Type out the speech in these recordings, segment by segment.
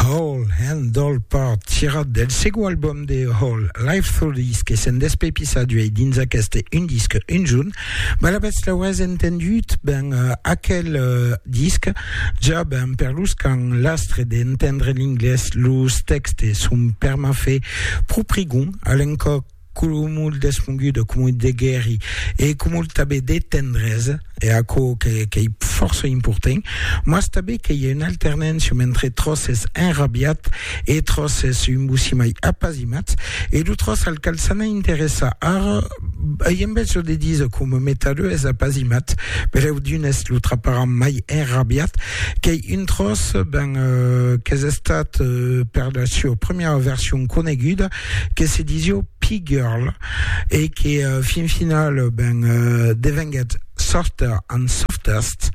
Hole and Dole part tirat del segon album de Hole, Life Through This, que se'n despepissa d'uei dins aqueste un disc un junh. Balabètz l'aurètz entendut, ben, aquel disc ja ben per los qu'an l'astre d'entendre l'inglés, los tèxtes son per m'a fe pro prigon a l'encòp. cumul d'esponguda, cumul de guèri e cumul tanben de tendresa, e aquò qu'ei fòrça important, mas tanben qu'ei un alternancium entre tròç es enrabiat e tròç es un bosimai apasimats, e lo tròç al cal s'ana interessar ara ei en besonh de díser coma metalheu es apasimat, berèu d'unes lo traparan mai enrabiat, qu'ei un tròç, ben, qu'es estat per la sua primièra version coneguda que se disio P-Girl e que fin final ben devenguèt Softer and Softest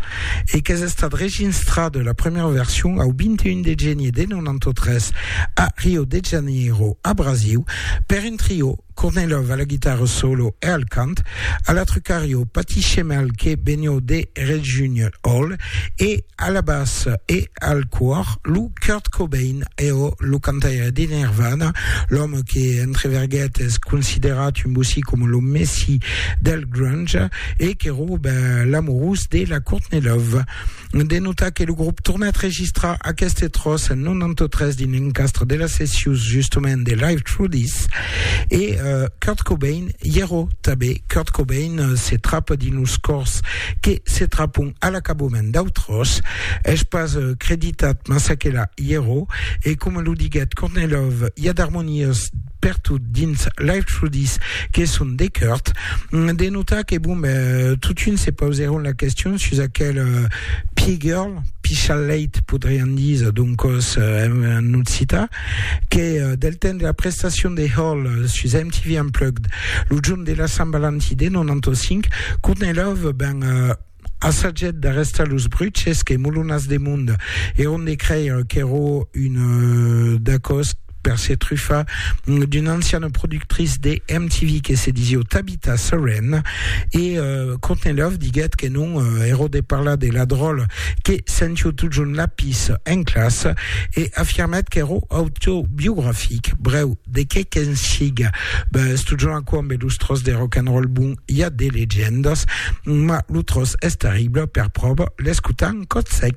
e qu'es estat reginstrat la premièra version au 21 de genier de 93 a Rio de Janeiro a Brasiu per un trio Kornilov a la guitarra solo e al cant, a la trucario Patty Schemel que benió de Regina Hall e a la bassa e al còr lo Kurt Cobain e ò lo cantaire de Nirvana, l'òme que entre verguet es considerat un bocí coma lo Messi del grunge e que rob l'amorós de la Courtney Love. De notar que lo grop tornèt registrar aqueste tròç en 93 dins l'encastre de las sessions justament de Live Through This e Kurt Cobain i ero tabé. Kurt Cobain se trapa dins los còrs que se trapon a l'acabament dau tròç, es pas creditat mas aquela i ero, e coma lo diguèt Kornilov, i a d'armonias pertot dins Life Through This que son de Kurt, de notar que bon ben totun se pausèron la question sus aquel Pie Girl, Pichaleit podrián díser doncòs en occitan, que del temps de la prestacion de Hall sus MTV Unplugged, lo jorn de la Sant Valentin de 95, Courtney Love ben assagèt d'arrestar los bruches que Molonas de Mond èron de creire qu'èra un dacost per se trufar d'una anciana productrice de MTV que se disiá Tabitha, Rita Seren e euh, Courtney Love diguèt que non euh, ero de parlar de la dròla que sentiu totjorn lapis en classa e afirmèt qu'ero autobiografic, brèu, de qué qu'en siga, bes, totjorn aquò ambe los tròç de rock and roll bon i a de legendas, ma lo tròç es terrible, per pròva l'escutam còt sec.